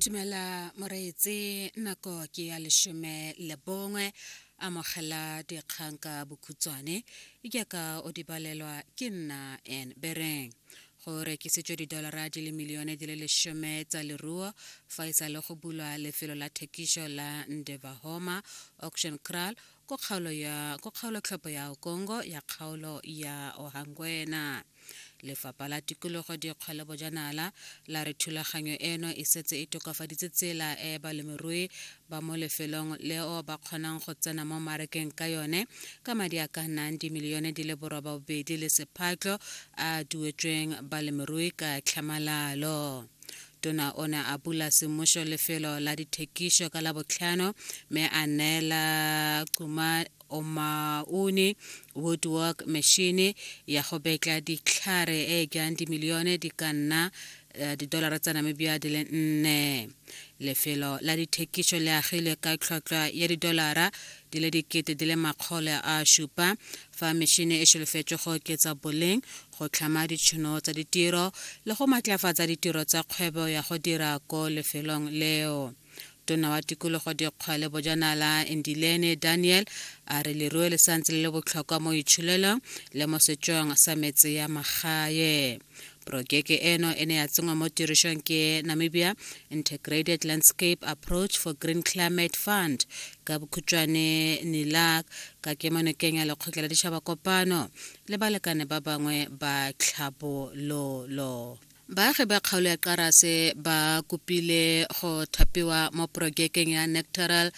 Tumela moreetse nako ke ya leshome le bongwe amogela dikgang ka bokhutswane jaaka o di balelwa ke nna en bereng go rekisitswe didolara di le milione di le leshome tsa leruo fa e sa le go bulwa lefelo la thekišo la ndevahoma auction cral ko kgaolo tlhopo ya okongo ya kgaolo ya ohangwena Lefapha la Tikologo Dikgwa le Bojanala la re thulaganyo eno e setse e tokafaditse tsela e balemirui ba mo lefelong leo ba kgonang go tsena mo marekeng ka yone ka madi a ka nnang dimilione di le borobabobedi le sephatlo a duetsweng balemirui ka tlhamalalo. Tona o ne a bula semmušo lefelo la dithekišo ka Labotlhano mme a neela Cuma o maune woodwork machine ya go betla ditlhare e e jang dimilione di ka nna eh, didolara tsa namibia di le nne lefelo la dithekišo le agilwe ka tlhwatlhwa ya didolara di le dikete di le makgole a šupa fa mešhini e šholofetšwe go oketsa boleng go tlhama ditšhono tsa ditiro le go matlafatsa ditiro tsa kgwebo ya go dira ko lefelong leo tona wa tikologo dikgwa le bojanala endilene daniel a re leruo le santse le le botlhokwa mo itsholelong le mo setsong sa metse ya magae Porojeke eno e ne ya tsenngwa mo tirisong ke Namibia Integrated Landscape Approach for Green Climate Fund ka bokhutšwane NILAC ka kemonokeng ya lekgotla la ditšhaba kopano le balekane ba bangwe ba tlhabololo. Baagi ba kgaolo ya Qarase ba kopile go thapiwa mo porojekeng ya Nectaral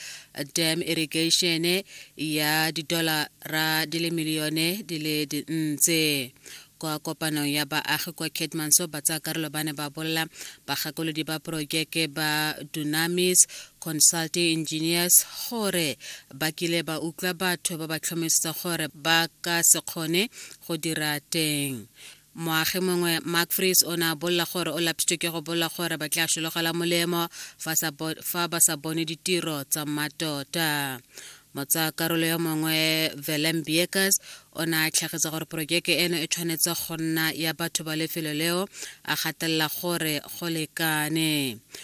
Dam Irrigation ya didolara di le milione di le dintse kwa kopanong ya baagi kwa Keetmanshoop ba tsaya karolo ba ne ba bolela bagakolodi ba porojeke ba Dunamis Consulting Engineers gore ba kile ba utlwa batho ba ba tlhomisetsa gore ba ka se kgone go dira teng Moagi mongwe Mark Fries o ne a bolela gore o lapsitswe ke go bolela gore ba tla sologela molemo fa ba sa bone ditiro tsa mmatota. Motsayakarolo yo mongwe Willem Beekers o ne a tlhagisa gore porojeke eno e tshwanetse go nna ya batho ba lefelo leo a gatelela gore go lekane.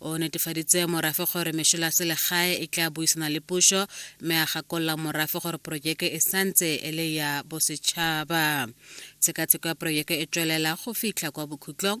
o netefaditse morafe gore mešola selegae e tla buisana le pušo mme a gakolola morafe gore porojeke e santse e le ya bosetšhaba tshekatsheko ya porojeke e tswelela go fitlha kwa bokhutlong